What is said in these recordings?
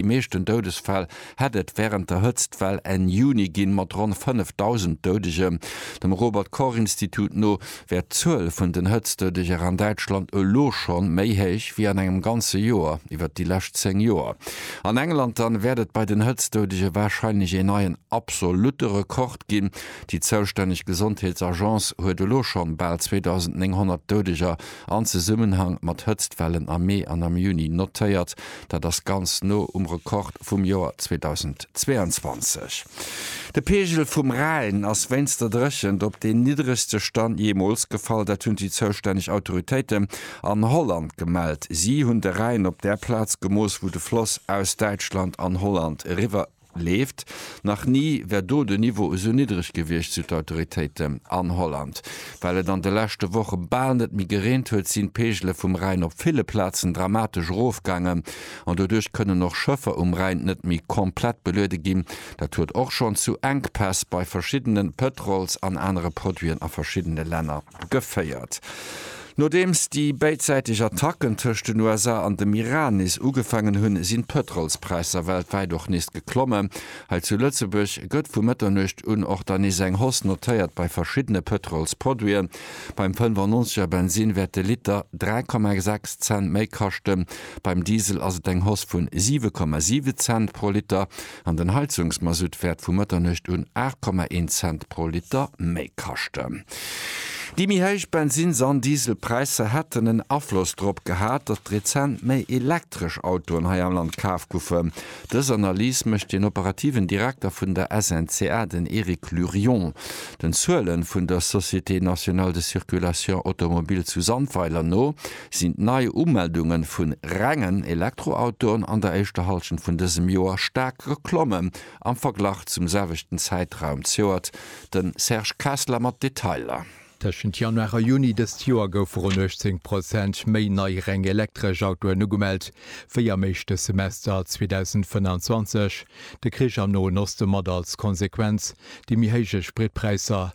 déi meeschten Doudesfäll hätt et wärend der Hëtztwell Enn Juni ginn, mat ronn 5.000 Doudegen. Dem Robert Koch Institut no wär d'Zuel vun den Hëtztdoudegen an Däitschland elo scho méi héich wéi an engem ganze Joer iwwert déi lescht 10 Joer. An England dann wäert et bei den Hëtztdoudege warscheinlech een neien absolutte Rekord ginn. Déi zoustänneg Gesondheetsagence huet elo schonn bal 2.900 Doudeger an Zesummenhang mat Hëtztwellen am Mee an am Juni notéiert. Dat ass ganz no um Rekord vum Joer 2022. De Peegel vum Rhäin ass wéinst der Dréchent op deen niddregste Stand jeemools gefall. Dat hunn déi zoustänneg Autoritéite an Holland gemellt. Si hunn de Rhäin op där Plaz gemooss, wou de Floss aus Däitschland an Holland eriwwer leeft. Nach ni wär do de Niveau esou niddreg gewiescht, sou d'Autoritéiten. An Holland, well et an de leschte Woche bal net méi gereent huet, sinn d'Peegele vum Rhäin op ville Plazen dramatesch erofgaangen an doduerch kënnen och Schëffer um Rhäin net méi komplett beluede ginn. Dat huet och schonn zu Enkpäss bei verschiddene Pëtrols an anere Produiten a verschiddene Länner. geféiert. Nodeems déi béidsäiteg Attacken tëscht den USA an dem Iran nees ugefaangen hunn, sinn d'Pëtrolspräisser weltwäit och nees geklommen. Hei zu Lëtzebuerg gëtt vu Mëtternuecht un och dann nees eng Hausse notéiert bei verschiddene Pëtrolsproduiten. Beim 95 er Bensinn wäert de Liter 3,6 Cent méi kaschten. Beim Diesel ass et eng Hausse vun 7,7 Cent pro Liter. an den Heizungsmasutt wäert vu Mëtternuecht un 8,1 Cent pro Liter méi kaschten. Déi méi héich Bensinns an Dieselpräisser hätten en Afloss drop gehat, datt rezent méi elektresch Autoen hei am Land kaf goufen. Dës Analys mécht den operativen Direkter vun der SNCA, den Eric Lurion, den Zuele vun der Société nationale de circulation automobile zu Sandweiler no. sinn d'Neiumeldunge vun rengen Elektroautoen an der éischter Hallschent vun dësem Joer staark geklommen am Verglach zum selwechten Zäitraum zejoert. De Serge Kessler mat Detailer. Tëschent Januar a Juni dëst Joer goufe ronn 18 Prozent méi nei reng elektresch Autoen ugemellt, wéi am éischte Semester 2025. De Krich am Noen Oste mat als Konsequenz déi méi héije Spritpräisser.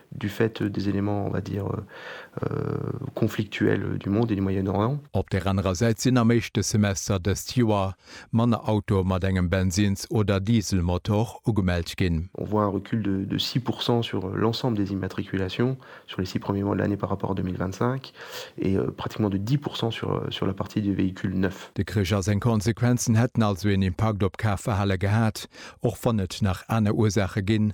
du fait des éléments, on va dire, conflictuels du monde et du Moyen-Orient. Op der anerer Säit sinn am éischte Semester dëst Joer manner Autoe mat engem Bensins oder Dieselmotor ugemellt ginn. On voit un recul de de six pour cent sur l'ensemble des immatriculations sur les six premiers mois de l'année par rapport à 2025 et pratiquement de dix pour cent sur sur la partie des véhicules neufs. De Krich a seng Konsequenzen hätten also een Impakt op d'Kafverhale gehat, och wann et nach aner Ursaache ginn,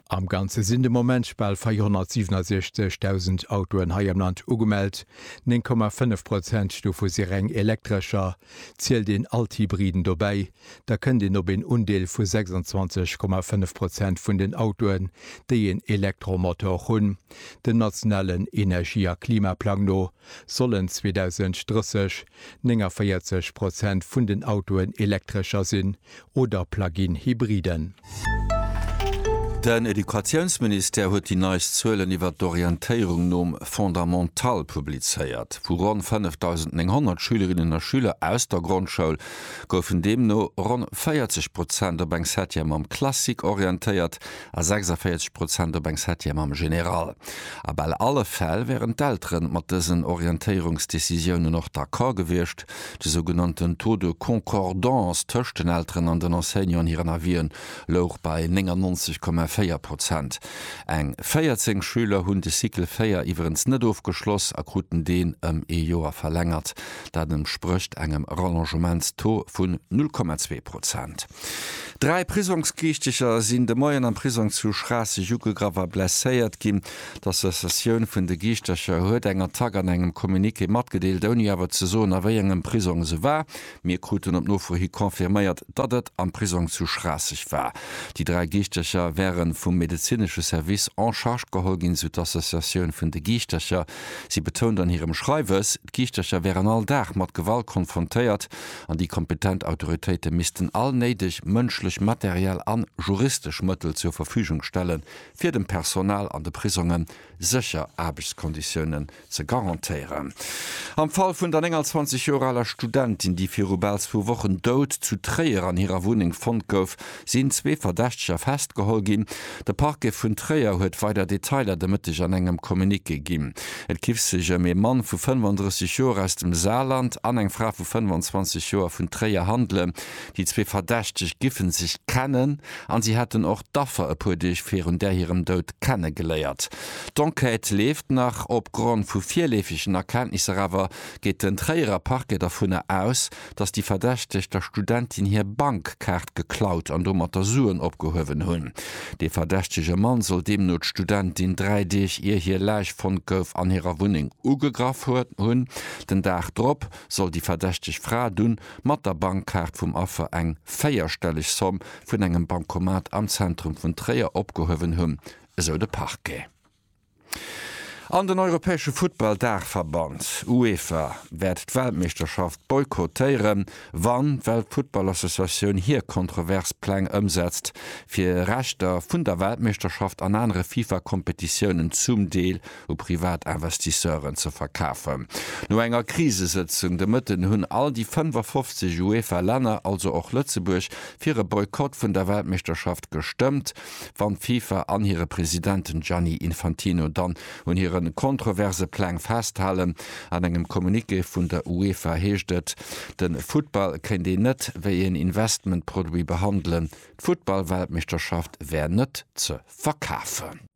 Am Ganze sinn de Moment bal 467.000 Autoen hei am Land ugemellt, 9,5 Prozent dovu si reng Elektrescher. Zielt een all d'Hybriden dobäi, da kënnt een op een Undeel vu 26,5 Prozent vun den Autoen, déi een Elektromotor hunn. Dem nationalen Energie a Klimaplang no sollen 2030 49 Prozent vun den Autoen Elektrescher sinn, oder Plug-in Hybriden. Den Educatiounsministère huet déi neist Zuelen iwwert d'Orientéierung nom Fondamental publizéiert. Vu ronn 5.900 Schülerinnen a Schüler aus der Grondschoul goufen deemno ronn 40 Prozent op eng Septième am Classique orientéiert a 46 Prozent op eng Septième am Général. A bal alle Fäll wären d'Eltere mat dësen Orientéierungsdecisiounen och d'accord gewiescht. De sougenannten Taux de concordance tëscht den Elteren an den Enseignanten hiren Avisen louch bei 99,4 Prozent. Eng 14 Schüler hunn de Cycle 4 iwwerens net ofgeschloss a kruten deen ëm ee Joer verlängert. Dat entsprécht engem Rallongementstaux vun 0,2 Prozent. Dräi Prisongsgieschteger sinn de Moien am Prisong zu Schraasseg ugegraff a blesséiert ginn. D'Associatioun vun de Giischtercher huet eng Attack an engem Communiqué matgedeelt, ouni awer ze soen, a wéi engem Prisong se war. Mir kruten op Nofro hi confirméiert, datt et am Prisong zu Schraasseg war. Déi dräi Giischtercher wäre vum medezinesche Service en charge geholl ginn, sou d'Associatioun vun de Giischtercher. Si betount an hirem Schreiwes, d'Giischtercher wären all Dag mat Gewalt konfrontéiert an déi kompetent Autoritéite missten all néideg mënschlech, materiell an juristesch Mëttel zur Verfügung stellen, fir dem Personal an de Prisonge sécher Aarbechtskonditiounen ze garantéieren. Am Fall vun der 29 Joer aler Studentin, déi viru bal zwou Wochen dout zu Tréier an hirer Wunneng fonnt gouf, sinn zwee Verdächteger festgeholl ginn. De Parquet vun Tréier huet weider Detailer de Mëtteg an engem Communiqué ginn. Et giff sech ëm ee Mann vu 35 Joer aus dem Saarland an eng Fra vu 25 Joer vun Tréier handelen, Déi zwee Verdächteg giffen sech kennen an si hätten och d'Affer e puer Deeg virun där hirem Doud kenne geléiert. D'Enquête leeft nach. Op Grond vu virleefegen Erkenntnisser awer geet den Tréierer Parquet dervunner aus, datt déi Verdächteg der Studentin hir Bankkaart geklaut an domatter Suen opgehuewen hunn. Dee verdächtege Mann soll deemno d'Studentin dräi Deeg ier hir Läich fonnt gouf an hirer Wunneng ugegraff hunn. Den Dag drop soll déi verdächteg Fra dunn mat der Bankkaart vum Affer eng véierstelleg Somm vun engem Bancomat am Zentrum vun Tréier opgehuewen hunn, esou de Parquet. An den europäesche Futtball-Daachverband, UEFA, wäert d'Weltmeeschterschaft boykottéieren, wann d'Weltfuttballassociatioun hir kontrovers Pläng ëmsetzt, fir Rechter vun der Weltmeeschterschaft an anere FIFA-Kompetitiounen zum Deel u privat Investisseuren ze verkafen. No enger Krisesëtzung de Mëtten hunn all déi 55 UEFA-Länner, also och Lëtzebuerg, fir e Boykott vun der Weltmeeschterschaft gestëmmt. Wann d'FIFA an hire President Gianni Infantino dann un hire kontroverse Pläng festhalen. An engem Communiqué vun der UEFA heescht et, de Futtball kéint een net wéi een Investmentproduit behandelen, d'Futtball-Weltmeeschterschaft wär net ze verkafen.